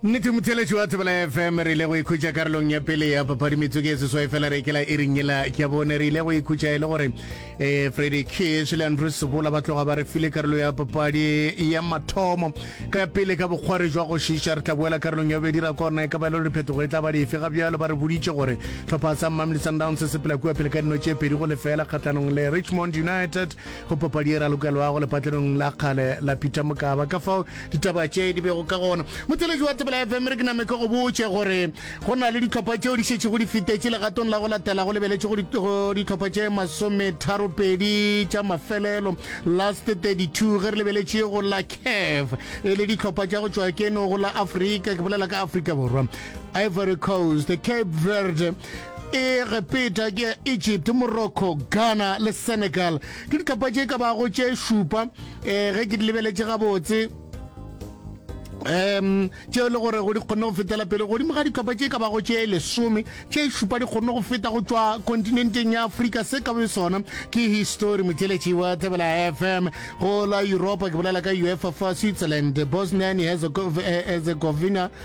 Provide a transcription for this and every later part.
nnete motheletši wa thobela ya fm re ile go ikhutša karolong ya pele ya papadi metsotso e seswai fela re kela e ringela ya bone re ile go ikhutša e le gore um freddy kish le andrew sebola ba tloga ba re file karolo ya papadi ya mathomo ka pele ka bokgware jwa go šiša re tla boela karolong ya bobedi ra korna e ka ba e le gore phetogo e tla ba dife ga bjalo ba re boditše gore tlhopha sa mamely sundowns se sepela kua pele ka dino tše pedi go lefela kgatlhanong le richmond united Go papadi e ralokelwago lepatlenong la kgale la Peter Mokaba, ka fao ditaba tše di bego ka gona. Motšweletši wa Thobela FM, re ke name ke go botše gore go na le dihlopha tšeo di šetšego di fetetše legatong la go latela go lebeletše go dihlopha tše masometharopedi tša mafelelo, last 32, ge re lebeletše go la CAF e le dihlopha tša go tšwa keno go la Afrika, ke bolela ka Afrika Borwa, Ivory Coast, Cape Verde, E re peta ke ya Egypt, Morocco, Ghana le Senegal. Ke ditlhopha tše ka bago tše šupa um ge ke di lebeletše gabotse um tšeo e le gore go di kgonne go fetela pele godimo ga ditlhopha tše ka bago tše lesome tše šupa di kgonne go feta go tšwa kontinenteng ya afrika se ka be sona ke histori motheletši wa thebela fm go la europa ke bolela ka uefa fa switzerland bosnia and herzegovina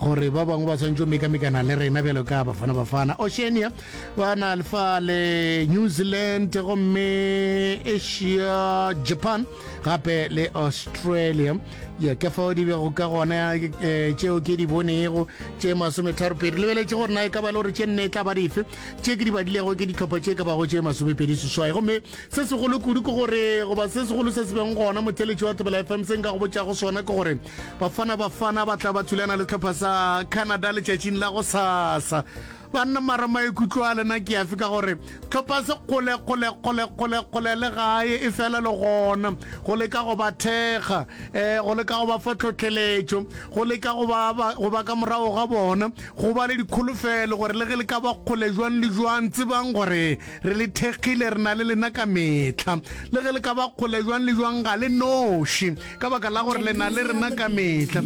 gore ba bangwe ba swanetše go mekamekana le rena bjalo ka bafana bafana oceania ba na lefa le new zealand gomme asia japan gape le australia ya ke fao di bego ka gona eh, tšeo ke di bonego tše masometharopedi lebeletše gore na e ka ba le gore tše nne e tla ba dife tše ke di badilego ke ditlhopha tše ka bago tše masomepedi seswai gomme se segolo kudu ke gore goba se segolo se se beng gona motheletši wa thobela fm se nka go botšago sona ke gore bafana bafana ba tla ba thulana le tlhopha sa canada letšatšing la go sasa banna mara maikutlo a lena ke afe ka gore tlhopha se kgole kgole kgole kgole kgole le gae e fela le gona go leka go ba thekga um go leka go ba fa tlhotlheletšo go leka go ba ka morago ga bona go ba le dikholofelo gore le ge le ka ba kgole jwang le jwang tsebang gore Re le thekgile, re na le lena ka mehla. Le ge le ka ba kgole jwang le jwang, ga le noši, ka baka la gore le na le rena ka mehla.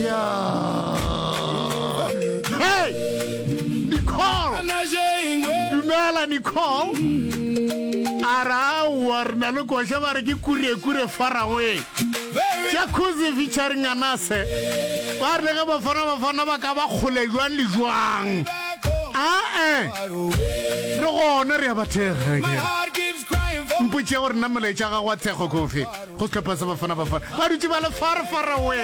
Ya! Hey! Nicole! Dumela, Nicole. A ra aowa, re na le koša ba re ke kurekure farawe. Jacuzzi featuring Anase. Ba re le ge Bafana Bafana ba ka ba kgole jwang le jwang. ae re gona re ya bathega mpotšea gore nna molaetša ga gwa thekgo kofe go setlhopha sa bafana bafana ba dutse ba le far far away